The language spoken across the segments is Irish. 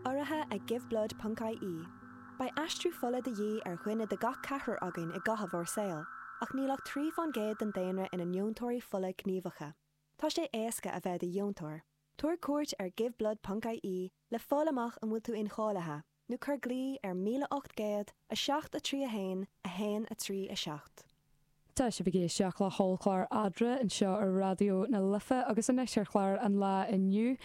Urraithe ag Give Blood ponc IE, beidh aistriú fola de dhíth ar dhuine de gach ceathrar againn i gcaitheamh ár saoil, ach níl ach trí fán gcéad den daonra ina ndeontóirí fola gníomhacha. Tá sé éasca a bheith i do dheontóir. Tabhair cuairt ar Give Blood ponc IE le fáil amach an bhfuil tú incháilithe. nó cuir glaoch ar 1800 7 3 1 1 3 7. Tá sibh ag éisteacht le hOllchlár Eadra anseo ar Raidió na Life agus anois ar chlár an lae inniu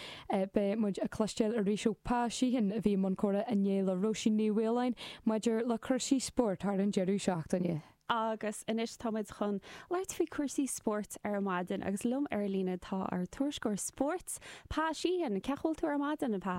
beidh muid ag cloisteáil arís ó Pa Sheehan a bhí i mbun comhrá inné le Róisín Ní Mhaoláin maidir le cúrsaí spóirt thar an deireadh seachtaine. Agus anois tá muid chun labhairt faoi chúrsaí spóirt ar maidin agus liom ar an líne tá ár tuairisceoir spóirt Pa Sheehan. Cén chaoi a bhfuil tú ar maidin a Pa?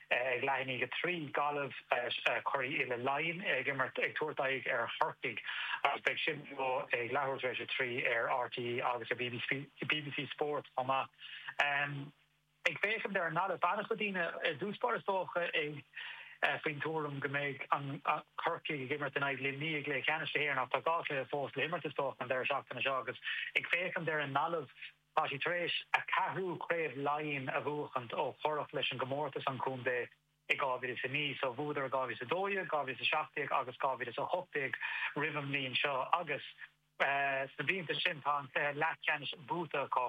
Ag leath i ndiaidh 3, Gaillimh, curaidh uile Laighean ag imirt, ag tabhairt aghaidh ar Chorcaigh agus beidh sin beo ag leathuair tar éis a trí ar RTÉ agus ar bbc Spórt chomh maith. Ag féachaint ar an nGaillimh, beidh an-chuid daoine ar dtús báire, is dócha, ag faoin tuairim go mbeidh Corcaigh ag imirt in aghaidh Luimnigh i gcluiche ceannais na hÉireann ach tá dhá chluiche fós le himirt, is dócha, an deireadh seachtaine seo agus ag féachaint ar an nGaillimh, Tá siad tar éis an ceathrú craobh Laighean a bhuachan ó cuireadh leis an gcomórtas an contae i 2009. So bhuadar i 2012, 2017 agus 2018 roimh an mbliain seo agus sna blianta sin tá an cluiche leathcheannais buaite acu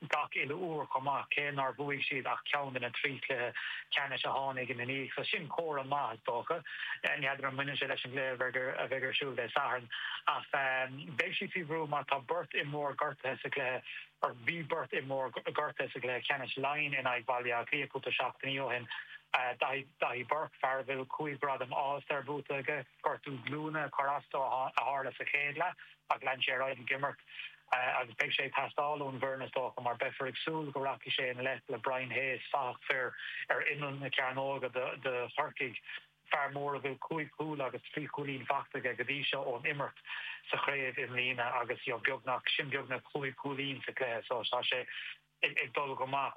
gach uile uair chomh maith, cé nár bhuaigh siad ach ceann de na trí chluiche ceannais a tháinig ina ndiaidh. So sin comhartha maith is dócha. N'fheadar an mbaineann sé leis an gcluiche a bheidh ar siúl Dé Sathairn ach. Beidh siad faoi bhrú mar tá beirt imreoir gortaithe sa gcluiche, or bhí beirt imreoir gortaithe sa gcluiche ceannais Laighean in aghaidh Bhaile Átha Cliath cúpla seachtainí ó shin, Daithí, Daithí Burke, fear a bhfuil cúig ghradam All Star buaite aige, gortú glúine, cor is dócha a tharla sa chéad leath ach lean sé ar aghaidh ag imirt agus beidh sé ag teastáil ón bhfoireann is dócha mar beifear ag súil go rachaidh sé i ngleic le Brian Hayes, fathach fir ar imeall na cearnóige do Chorcaigh. fear mór a bhfuil cúig chúl agus trí chúilín faighte aige go dtí seo ón imirt sa chraobh i mbliana agus beagnach, sin beagnach cúig chúilín sa chluiche so tá sé ag dul go maith.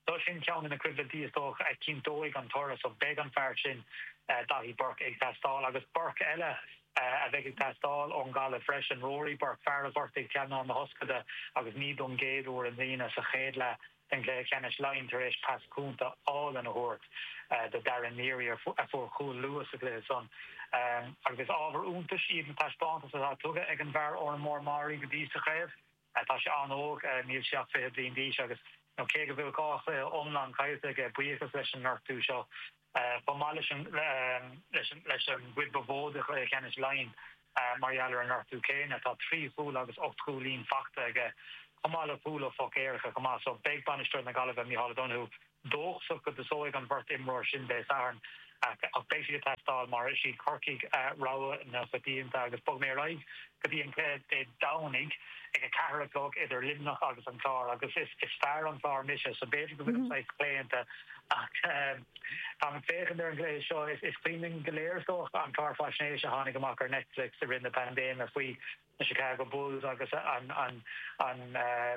So sin ceann de na coimhlintí is dócha a chinnteoidh an toradh so beidh an fear sin, Daithí Burke, ag teastáil agus Burke eile a bheidh ag teastáil ón nGaillimh freisin, Rory Burke, fear a ghortaigh teannán na hioscaide agus ní don gcéad uair i mbliana sa chéad leath. den chluiche ceannais Laighean tar éis pas cúnta álainn a thabhairt do Darragh Neary a fuair cúl luath sa chluiche san, agus is ábhar iontais iad na taispeántais atá tugtha ag an bhfear Órán Mór Meáraí go dtí sa chraobh. Tá sé an-óg, níl sé ach fiche bliain d'aois, agus cé go bhfuil dhá chluiche iomlán caillte aige, buíochas leis an ngortú seo chomh maith leis an gcuid ba mhó de chluiche ceannais Laighean mar gheall ar an ngortú céanna. Tá trí chúl agus ocht gcúilín faighte aige, chomh maith le cúl ó phoc éirice chomh maith, so beidh bainisteoir na Gaillimhe, Micheál O'Donoghue, dóchasach go dtosóidh an bheirt imreoir sin Dé Sathairn. Ach beidh siad ag teastáil, mar is iad Corcaigh rogha na coitianta agus bogfaidh mé ar aghaidh. go dtí an cluiche Dé Domhnaigh ag a ceathair a chlog idir Luimneach agus an Clár agus is fear an Chláir mise so b'fhéidir go bhfuilim saghas claonta ach táim ag féachaint ar an gcluiche seo. Is cuimhin linn go léir is dócha an clár faisnéise a tháinig amach ar Netflix i rith na paindéime faoi na Chicago Bulls agus an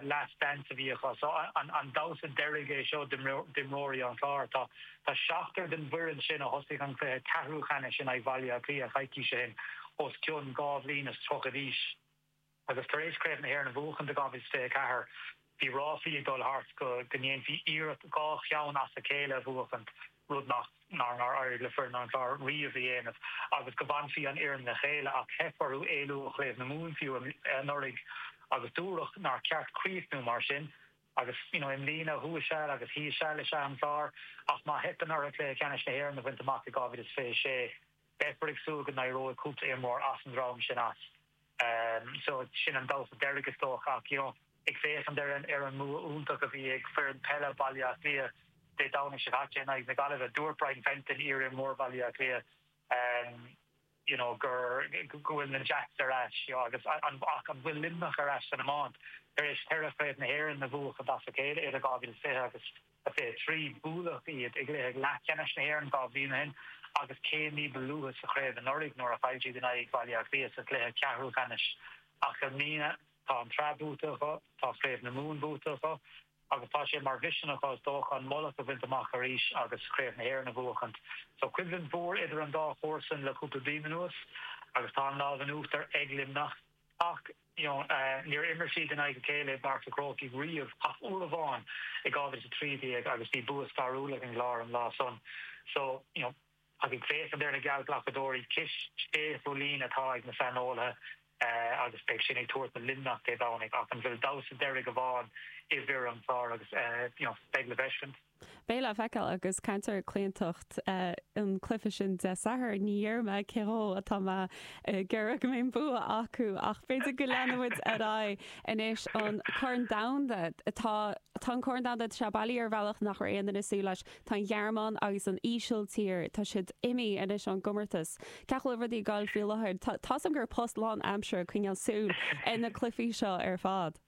Last Dance a bhí acu so an damhsa deiridh é seo d'imreoirí an Chláir? Tá. Tá seachtar den bhfoireann sin, a thosaigh an cluiche ceathrúcheannais in aghaidh Bhaile Átha Cliath coicís ó shin, os cionn dhá bhliain is tríocha d'aois agus tar éis Craobh na hÉireann a bhuachaint i 2024, bhí ráflaí ag dul thart go ndéanfaí iarracht dhá cheann as a chéile a bhuachaint, rud nár éirigh le foireann an Chláir riamh a dhéanamh, agus go bhfanfadh an fhoireann le chéile. Ach theip orthu éalú ó Chraobh na Mumhan fiú anuraidh agus dúradh nár cheart críochnú mar sin. Agus you know i mbliana thuas seal agus thíos seal is ea an Clár ach má theipeann orthu Cluiche Ceannais na hÉireann a bhaint amach i 2026 beifear ag súil go n-éireoidh cúpla imreoir as an dream sin as so sin an damhsa deiridh is dócha ach you know ag féachaint ar an ar an mbua iontach a bhí ag foireann peile Bhaile Átha Cliath Dé Domhnaigh seo caite in aghaidh na Gaillimhe dúirt Brian Fenton iar-imreoir Bhaile Átha Cliath you know gur, go bhfuil na Jacks ar ais, you know agus an, ach an bhfuil Luimneach ar ais san iomáint? Tar éis ceithre chraobh na hÉireann a bhuachaint as a chéile idir 2020 agus 23, buaileadh iad i gcluiche leathcheannais na hÉireann dhá bhliain ó shin agus céim ní ba luaithe sa chraobh anuraidh nuair a chaill siad in aghaidh Bhaile Átha Cliath sa gcluiche ceathrúcheannais. Ach i mbliana, tá an tsraith buaite acu, tá Craobh na Mumhan buaite acu, agus tá sé mar mhisean acu, is dócha, an mullach a bhaint amach arís agus Craobh na hÉireann a bhuachaint. Tá coimhlint mhór idir an dá chomharsain le cúpla bliain anuas agus tá an lámh in uachtar ag Luimneach. Ach níor imir siad in aghaidh a chéile i bPáirc an Chrócaigh riamh ach uair amháin i 2013 agus bhí bua stairiúil ag an gClár an lá san. Ag féachaint ar na geallghlacadóirí, cúig sé chúilín atá ag na saineolaithe agus beidh sin ag tabhairt do Luimneach Dé Domhnaigh ach an bhfuil damhsa deiridh amháin i bhfir an Chláir agus beidh le feiscint. Beidh le feiceáil agus caint ar chlaontacht an cluiche sin Dé Sathairn, ní dhéarfaidh mé cé acu atá mé ag iarraidh go mbeidh an bua acu ach b'fhéidir go leanfaidh muid ar aghaidh anois an Corn Domhanda, tá an Corn Domhanda seo bailithe ar bhealach nach raibh aon duine ag súil leis. Tá an Ghearmáin agus an Ísiltír, tá siad imithe anois ón gcomórtas. Cén chaoi a bhfuil rudaí ag gabháil faoi láthair. Tá, tá 's agam gur post lánaimseartha coinneáil súl ar na cluichí seo ar fad.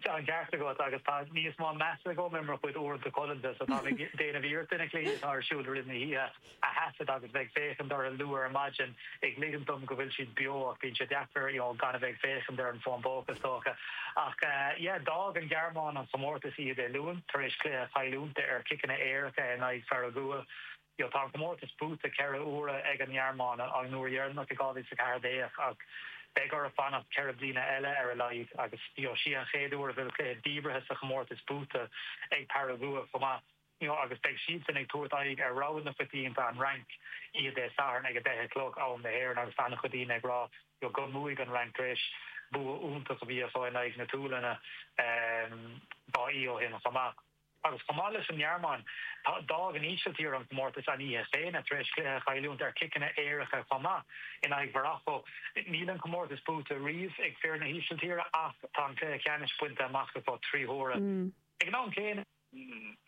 Tá an ceart agat, agus tá níos mó measa agam ar mo chuid uaireanta codlata, so táim ag déanamh iarracht na cluichí atá ar siúl i rith na hoíche. a thaifead agus a bheith ag féachaint orthu luath ar maidin ag ligint dom go bhfuil siad beo ach bíonn sé deacair you know gan a bheith ag féachaint ar an bhfón póca is dócha ach yeah d'fhág an Ghearmáin an comórtas oíche Dé Luain tar éis cluiche a chailliúint ar chiceanna éirice in aghaidh Pharagua you know tá an comórtas buaite ceithre uaire ag an nGearmáin an uair dheireanach i 2014 ach beidh orthu fanacht ceithre bliana eile ar a laghad agus you know sí an chéad uair a bhfuil cluiche díbeartha sa chomórtas buaite ag Paragua chomh maith. you know agus beidh siadsan ag tabhairt aghaidh ar rogha na coitianta, an Fhrainc, oíche Dé Sathairn ag a deich a chlog, am na hÉireann, agus tá an-chuid daoine ag rá, you know, go mbuafaidh an Fhrainc tar éis bua iontach a bhí acu in aghaidh na tSualainne, ehm, dhá oíche ó shin chomh maith. Agus chomh maith leis an nGearmáin, tá, d'fhág an Ísiltír an comórtas an oíche chéanna tar éis cluiche a chailliúint ar chiceanna éirice chomh maith in aghaidh Mharacó. Níl an comórtas buaite riamh ag fir na hÍsiltíre ach tá an cluiche ceannais bainte amach acu trí huaire. Ag an am céanna.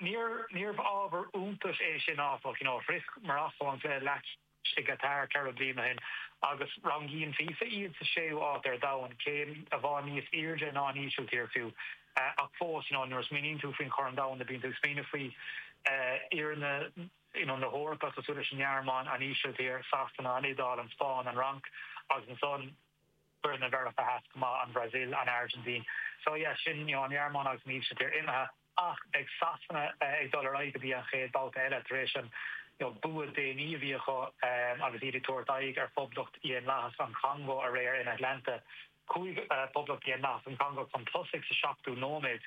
Níorbh ábhar iontais é sin, áfach. Shroich Marocó an cluiche leathcheannais i gCatar ceithre bliana ó shin agus rangaíonn FIFA iad sa séú háit ar domhan, céim i bhfad níos airde ná an Ísiltír fiú. Ach fós, nuair a smaoiníonn tú faoin Chorn Domhanda, bíonn tú ag smaoineamh faoi fhoirne na hEorpa cosúil leis an nGearmáin, an Ísiltír, Sasana, an Iodáil, an Spáinn, an Fhrainc agus ansan, Foirne Mheiriceá Theas chomh maith, an Bhrasil, an Airgintín. So yeah, sin, you know, an Ghearmáin agus an Ísiltír imithe. Ach beidh Sasana ag dul ar aghaidh go dtí an chéad babhta eile tar éis an, you know, bua déanach a bhí acu agus iad ag tabhairt aghaidh ar Phoblacht Dhaonlathach an Chongó aréir in Atlanta. Chuaigh Poblacht Dhaonlathach an Chongó chun tosaigh sa seachtú nóiméad.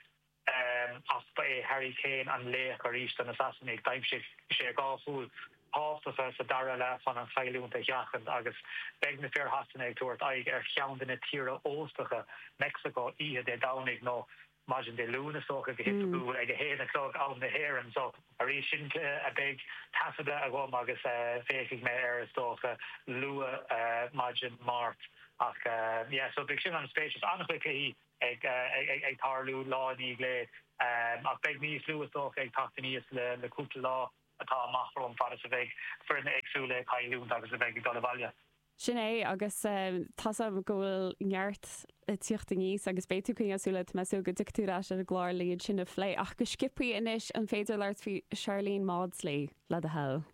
Ach ba é Harry Kane an laoch arís do na Sasanaigh. D'aimsigh sé dhá chúl thábhachtacha sa dara leath chun an chailliúint a sheachaint agus beidh fir Shasana ag tabhairt aghaidh ar cheann de na tíortha óstacha, Meicsiceo, oíche Dé Domhnaigh nó maidin Dé Luain, is dócha, go hoifigiúil ag a haon a chlog, am na hÉireann. So, arís, sin é beidh taifeadta agam agus féachfaidh mé air, is dócha, luath maidin Máirt. Ach, yeah, so beidh sin an-spéisiúil. Is an-chuid cluichí. ag tarlú lá i ndiaidh lae, ach beidh níos lú, is dócha, ag teacht aníos leis an gcúpla lá atá amach romhainn, fad is a bheidh foirne éagsúla ag cailliúint agus a bheidh ag dul abhaile. Sin é, agus tá 's agam go bhfuil neart le tíocht aníos, agus beidh tú ag coinneáil súil, tá mé ag súil go dtiocfaidh tú ar ais ar an gclár le iad sin a phlé, ach go sciopthaí anois, an féidir labhairt faoi Sharlene Mawdsley, le do thoil?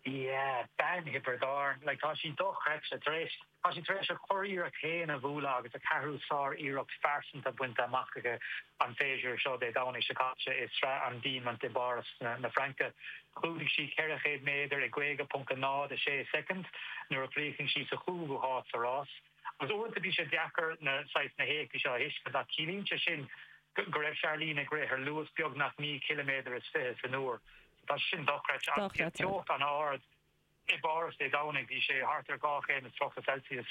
Yeah, bean Thiobraid Árann, like tá sí dochreidte, tar éis, tá sí tar éis a curiarracht féin a bhualadh agus a ceathrú sár-iarracht phearsanta bainte amach aici an séasúr seo Dé Domhnaigh seo caite i Sraith an Diamant i bPáras na Fraince. Chlúdaigh sí 400 méadar i 50.06 soicind nuair a chríochnaigh sí sa chúigiú háit sa rás agus uaireanta bíonn sé deacair na saghas na héachtaí seo a thuiscint ach ciallaíonn sé sin go raibh Sharlene ag rith ar luas beagnach naoi chiliméadar is fiche san uair. Tá sé sin dochreidte. Agus bhí an teocht an-ard i bPáras Dé Domhnaigh, bhí sé thart ar dhá chéim is tríocha Celsius.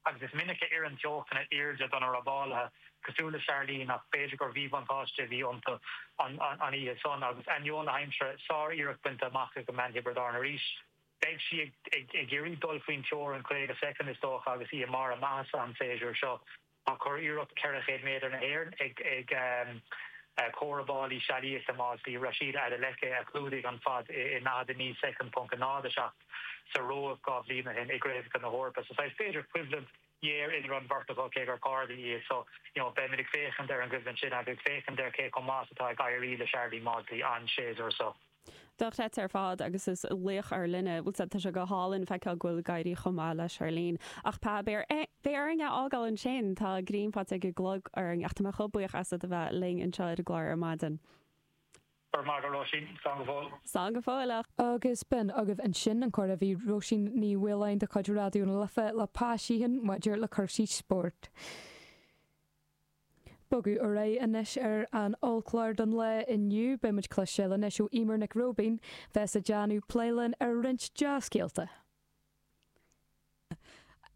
Agus is minic a oireann teochtanna arda do na rábálaithe, cosúil le Sharlene, ach b'fhéidir gur mhíbhuntáiste a bhí iontu an oíche san. Agus ainneoin na haimsire, sár-iarracht bainte amach ag bean Thiobraid Árann arís. Beidh sí ag iarraidh dul faoin teorainn 50 soicind, is dócha, agus í i mbarr a maitheasa an séasúr seo. Tá curiarracht 400 méadar na hÉireann ag comhbhall foirne sealaíochta Mawdsley, Rhasidat Adeleke, a chlúdaigh an fad i 49 soicind, ponc a náid a seacht, sa Róimh dhá bhliain ó shin i gCraobhacha na hEorpa so saghas, b'fhéidir, coimhlint ghéar idir an bheirt acu, cé gur cairde iad. So, you know, beimid ag féachaint ar an gcoimhlint sin agus ag féachaint ar cé chomh maith is atá ag éirí le Sharlene Mawdsley an séasúr seo. Dochreidte ar fad agus is laoch ár linne. Bhuel, tá sé go hálainn feiceáil go bhfuil ag éirí chomh maith le Sharlene. Ach Pa, beidh orainn é a fhágáil ansin, tá greim faighte ag an gclog orainn. Ach tá mé chomh buíoch asat a bheith linn anseo ar an gclár ar maidin. Go raibh maith agat Róisín. Slán go fóill. Slán go fóill. Agus b'in agaibh ansin an comhrá a bhí ag Róisín Ní Mhaoláin de chuid Raidió na Life le Pa Sheehan maidir le cúrsaí spóirt. Ag bogadh ar aghaidh anois ar an ollchlár don lá inniu. Beidh muid ag cloisteáil anois ó Emer Nic Róibín a bheas ag déanamh plé linn ar roinnt dea-scéalta.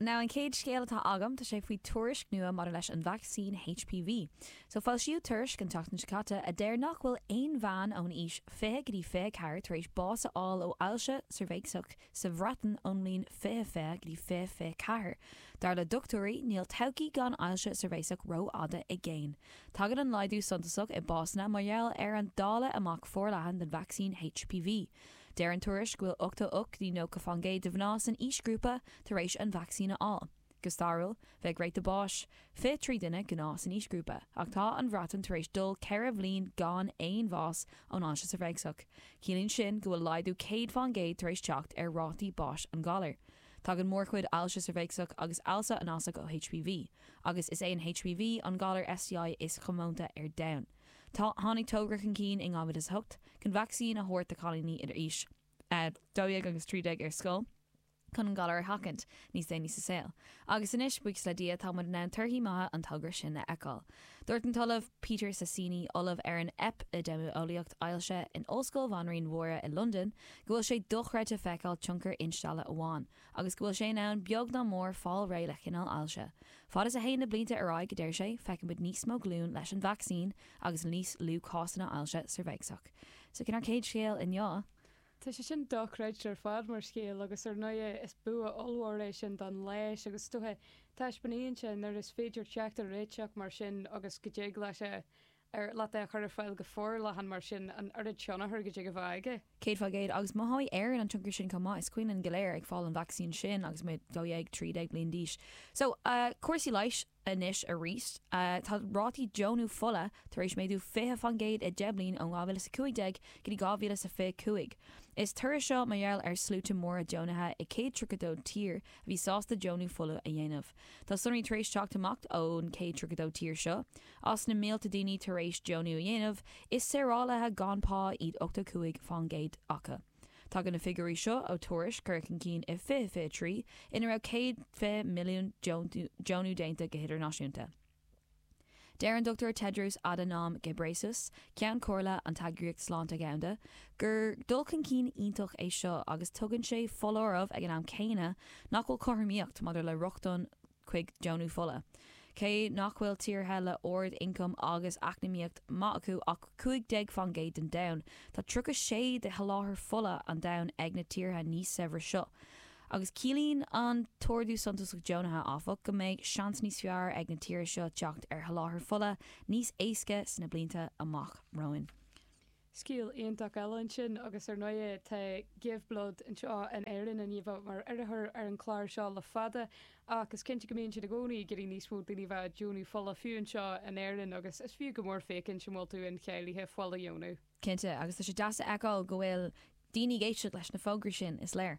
Now an chéad scéal atá agam, tá sé faoi tuairisc nua maidir leis an vacsaín HPV. So foilsíodh tuairisc an tseachtain seo caite a deir nach bhfuil aon bhean ón aois 20 go dtí 24 tar éis bás a fháil ó ailse cheirbheacsach, Sa Bhreatain, ón mbliain 2020 go dtí 2024, dar le dochtúirí, níl todhchaí gan ailse cheirbheacsach rófhada i gcéin. Tagann an laghdú suntasach i mbásanna mar gheall ar an dáileadh amach forleathan den vacsaín HPV. Deir an tuairisc go bhfuil 88 go dtí 90 faoin gcéad de mhná san aoisghrúpa tar éis an vacsaín a fháil. Go stairiúil, bheadh ráta báis fiche trí duine gnáth san aoisghrúpa, ach tá an Bhreatain tar éis dul ceithre bhliain gan aon bhás ón ailse cheirbheacsach. Ciallaíonn sin go bhfuil laghdú céad faoin gcéad tar éis teacht ar rátaí báis an ghalair. Tagann mórchuid ailse cheirbheacsach agus ailse anasach ó HPV, agus is é an HPV an galar STI is comónta ar domhan. Tháinig tógra chun cinn in 2008 chun vacsaín a thabhairt do chailíní idir aois a dó dhéag agus trí déag ar scoil, chun an galar a sheachaint níos déanaí sa saol. Agus anois, buíochas le Dia, tá muid in ann torthaí maithe an togra sin a fheiceáil. Dúirt an tOllamh Peter Sasieni, Ollamh ar an Eipidéimeolaíocht Ailse, in Ollscoil Bhanríon Mháire i Londain, go bhfuil sé dochreidte feiceáil tionchar instealladh amháin, agus go bhfuil sé in ann, beag ná mór, fáil réidh le chineál ailse. Fad is a théann na blianta ar aghaidh, a deir sé, feicfimid níos mó glúin leis an vacsaín, agus níos lú cásanna ailse ceirbheacsach. So sin ár céad scéal inniu. Tá sé sin dochreidte ar fad mar scéal agus ar ndóigh is bua ollmhór é sin don leigheas agus is dócha taispeánaíonn sé nuair is féidir teacht ar réiteach mar sin agus go dtig leis, ar leat é a chur ar fáil go forleathan mar sin an oiread tionchar go dtig a bheith aige. Céad faoin gcéad. Agus mothóidh Éirinn an tionchar sin chomh maith. Is cuimhin linn go léir ag fáil an vacsaín sin agus muid dhó dhéag, trí déag bliain d'aois. So, cúrsaí leighis. Anois arís, tá rátaí deonú fola tar éis méadú 20 faoin gcéad i 10 mbliain ó 2015 go dtí 2025. Is toradh seo mar gheall ar sluaite móra deonaithe i 132 tír a bhí sásta deonú fola a dhéanamh. Tá sonraí tar éis teacht amach ón 132 tír seo. As na mílte daoine tar éis deonú a dhéanamh, is saorálaithe gan pá iad 85 faoin gcéad acu. Tagann na figiúirí seo ó tuairisc curtha chun cinn i 2023 ina raibh 120 milliún deonú déanta go hidirnáisiúnta. Deir an Dr Tedros Adhanom Ghebreyesus, Ceann Comhairle an tEagraíocht Sláinte Dhomhanda, gur dul chun cinn iontach é seo agus tugann sé foláireamh ag an am céanna nach bhfuil cothromaíocht maidir le rochtain chuig deonú fola. Cé nach bhfuil tíortha le ard ioncam agus eacnamaíocht maith acu ach 15 faoin gcéad den domhan, tá 36 de sholáthar fola an domhain ag na tíortha níos saibhre seo. Agus ciallaíonn an t-ardú suntasach deonaithe, áfach, go mbeidh seans níos fearr ag na tíortha seo teacht ar sholáthar fola níos éasca sna blianta amach romhainn. Scéal iontach eile ansin, agus ar ndóigh tá Give Blood anseo in Éirinn a bhíodh mar urraitheoir ar an chlár seo le fada, ach is cinnte go mbíonn siad i gcónaí ag iarraidh níos mó daoine a bheith ag deonú fola, fiú anseo in Éirinn, agus is fiú go mór féachaint an bhfuil tú incháilithe fuil a dheonú. Cinnte, agus tá sé deas a fheiceáil go bhfuil Daoine ag éisteacht leis na fógraí sin, is léir.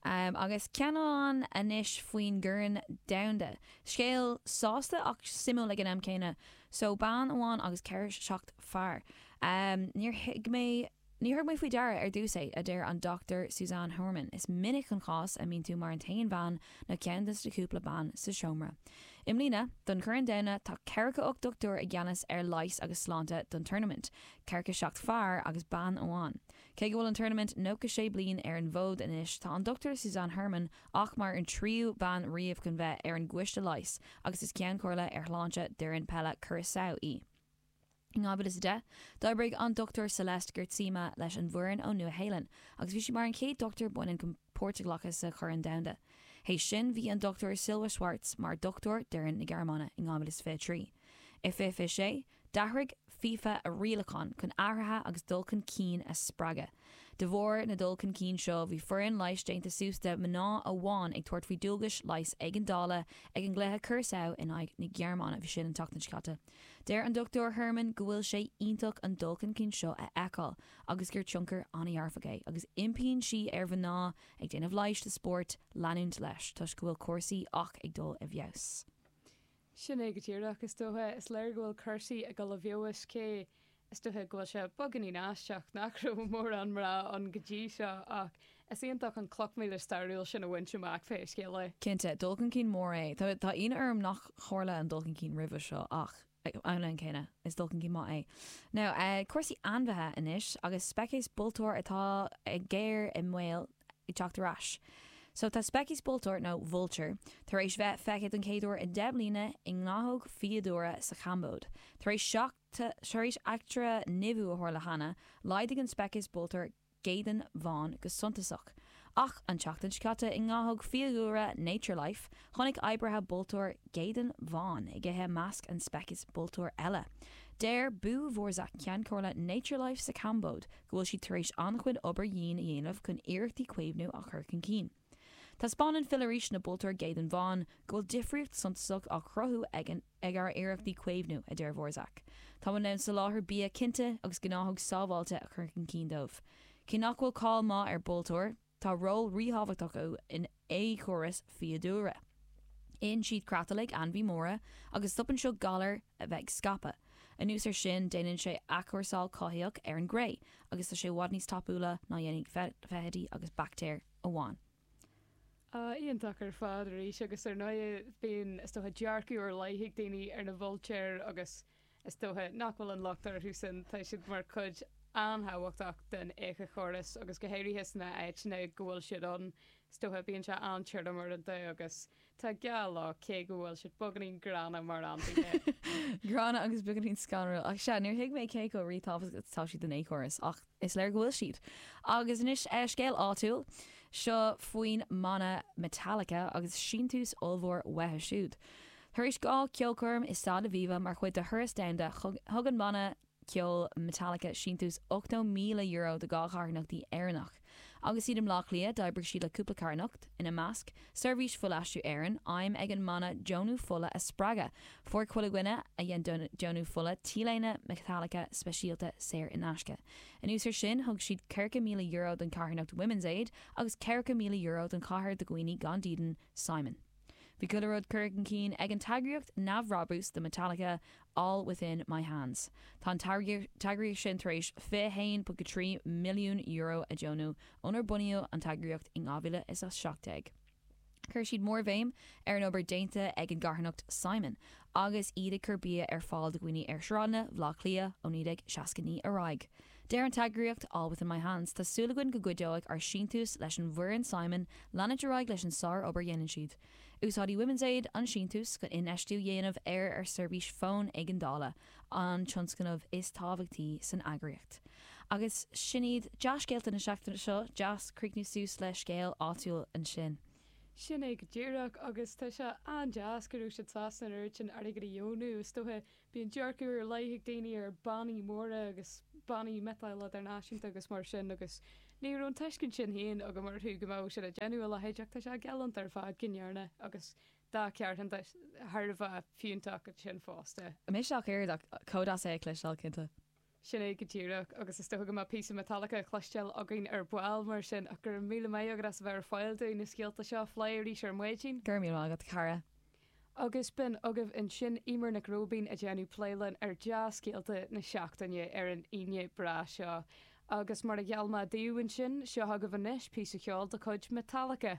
Agus ceann amháin anois faoin gCorn Domhanda. Scéal sásta ach suimiúil ag an am céanna. So bean amháin agus ceathracha seacht fear. Níor thuig mé, níor thug mé faoi deara ar dtús é, a deir an Dr Suzanne Huurman. Is minic an cás a mbíonn tú mar an t-aon bhean nó ceann des na cúpla bean sa seomra. I mbliana, don Chorn Domhanda, tá ceathracha ocht dochtúir i gceannas ar leighis agus sláinte don turnaimint, ceathracha seacht fear agus bean amháin. Cé go bhfuil an turnaimint nócha sé bliain ar an bhfód anois, tá an Dr Suzanne Herman ach mar an tríú bean riamh chun bheith ar an gcoiste leighis agus is ceann comhairle ar shláinte d'fhoireann peile Curaçao í. In 2010, d'oibrigh an Dr Celeste Geertsema leis an bhfoireann ón Nua-Shéalainn agus bhí sí mar an chéad dochtúir baineann chun páirt a ghlacadh sa Chorn Domhanda. Tar éis sin, bhí an Dr Silja Schwarz mar dhochtúir d'fhoireann na Gearmáine in 2023. I 2026. D'athraigh FIFA a rialacháin chun athruithe agus dul chun cinn a spreagadh. De bharr na dul chun cinn seo, bhí foireann leighis déanta suas de mhná amháin ag tabhairt faoi dualgais leighis éigeandála ag an gcluiche Curaçao in aghaidh na Gearmáine b'shin an tseachtain seo caite. Deir an Dr Herman go bhfuil sé iontach an dul chun cinn seo a fheiceáil agus gur tionchar an-dhearfach é agus impíonn sí ar mhná ag déanamh leighis sa spórt leanúint leis toisc go bhfuil cúrsaí ach ag dul i bhfeabhas. Sin é go díreach, is dócha. Is léir go bhfuil cúrsaí ag dul i bhfeabhas, cé, is dócha, go bhfuil sé beagáinín aisteach nach raibh mórán mná ann go dtí seo, ach is iontach an chloch mhíle stairiúil sin a bhaint amach, pé scéal é. Cinnte, dul chun cinn mór é. Tá ionadh orm nár tharla an dul chun cinn roimhe seo, ach mar an gcéanna, is dul chun cinn maith é. Now, cúrsaí ainmhithe anois, agus speiceas bultúr atá i ngéar i mbaol. ag teacht ar ais. So tá speiceas bultúir, nó vulture, tar éis bheith feicthe don chéad uair i deich mbliana i ngnáthóg fiadhúlra sa Chambóid. Tar éis tar éis eachtra nimhiú a tharla cheana, laghdaigh an speiceas bultúir geadáin bháin go suntasach. Ach an tseachtain seo caite i ngnáthóg fiadhúlra Nature Life, chonaic oibrithe bultúr geadáin bháin ag ithe i measc an speiceas bultúir eile. Deir Bou Vorsak, Ceann Comhairle Nature Life sa Chambóid, go bhfuil siad tar éis an-chuid obair dhian a dhéanamh chun iarrachtaí caomhnú a chur chun cinn. Taispeánann filleadh arís na bultúir geadáin bháin go bhfuil difríocht suntasach á chruthú ag ár iarrachtaí caomhnú, a deir Vorsak. Táimid in ann soláthar bia cinnte agus gnáthóg sábháilte a chur chun cinn dóibh. Cé nach bhfuil cáil maith ar bultúir, Tá ról ríthábhachtach acu in éiceachóras fiadhúlra. Itheann siad creatlaigh ainmhí móra, agus stopann seo galair a bheith ag scaipeadh. Anuas ar sin, déanann sé athchúrsáil cothaitheach ar an gcré, agus tá sé i bhfad níos tapúla ná dhéanfaidh feithidí agus baictéir amháin. Áh, iontach ar fad arís, agus ar ndóigh, bíonn, is dócha, dearcadh faoi leith ag daoine ar na bultúir agus. Is dócha nach bhfuil an locht orthusan, tá siad mar chuid an-thábhachtach den éiceachóras agus go háirithe sna háiteanna go bhfuil siad ann, is dócha, bíonn sé an-tirim uaireanta agus tá gá leo, cé go bhfuil siad beagáinín gránna mar ainmhithe. Gránna agus beagáinín scanrúil. Ach sea, níor thuig mé cé chomh ríthábhachtach atá siad don éiceachóras, ach. Is léir go bhfuil siad. Agus anois, scéal áitiúil. Seo faoin mbanna Metallica agus síntiús ollmhór uathu siúd. Tar éis dhá cheolchoirm i Staid Aviva mar chuid de thuras domhanda, thug an banna ceoil Metallica síntiús €80,000 do dhá charthanacht Éireannach. Agus iad i mBleá Cliath, d'oibrigh siad le cúpla carthanacht, ina measc, Seirbhís Fuilaistriú Éireann, aidhm ag an mbanna deonú fola a spreagadh. Fuair chuile dhuine a dhein deonú fola T-léine Metallica speisialta saor in aisce. Anuas ar sin, thug siad €40,000 don charthanacht Women's Aid agus €40,000 don chabhair do dhaoine gan dídean, Simon. Bhí chuile rud curtha chun cinn ag an t-eagraíocht neamhbhrabús do Metallica All Within My Hands. Tá an t-eagraíocht sin tar éis €21.3 milliún a dheonú ónar bunaíodh an t-eagraíocht in 2017. Chuir siad mórbhéim ar an obair déanta ag an gcarthanacht Simon agus iad ag cur bia ar fáil do dhaoine ar shráideanna Bhaile Átha Cliath ó 1969 ar aghaidh. Deir an t-eagraíocht All Within My Hands, Tá súil againn go gcuideoidh ár síntiúis leis an bhfoireann Simon leanúint ar aghaidh leis an sár-obair dhéanann siad. Úsáidfidh Women's Aid an síntiús chun infheistiú a dhéanamh ar ar seirbhís fóin éigeandála, an tionscnamh is tábhachtaí san eagraíocht. Agus sin iad dea-scéalta na seachtaine seo, deas críochnú suas le scéal áitiúil ansin. Sin é go díreach, agus tá sé an-deas go raibh siad sásta an oiread sin airgid a dheonú, is dócha Bíonn dearcadh ar leith ag daoine ar bannaí móra agus bannaí miotail idirnáisiúnta agus mar sin agus ní raibh an tuiscint sin féin agam orthu go mbeadh siad ag déanamh a leithéid ach tá sé galánta ar fad go ndearna agus dhá charthanacht thar a bheith fiúntach ansin fosta. Misneach ardaithe againn as é a chloisteáil cinnte. Sin é go díreach, agus is dócha go mbeadh píosa Metallica le cloisteáil againn ar ball, mar sin, ach go raibh míle maith agat as a bheith ar fáil dúinn, na scéalta seo a phlé arís ar maidin. Go raibh míle maith agat, a chara. Agus b'in agaibh ansin Eimear Nic Róibín ag déanamh plé linn ar dea-scéalta na seachtaine ar an Aoine breá seo. Agus mar a gheall mé daoibh ansin, seo chugaibh anois píosa ceoil de chuid Metallica.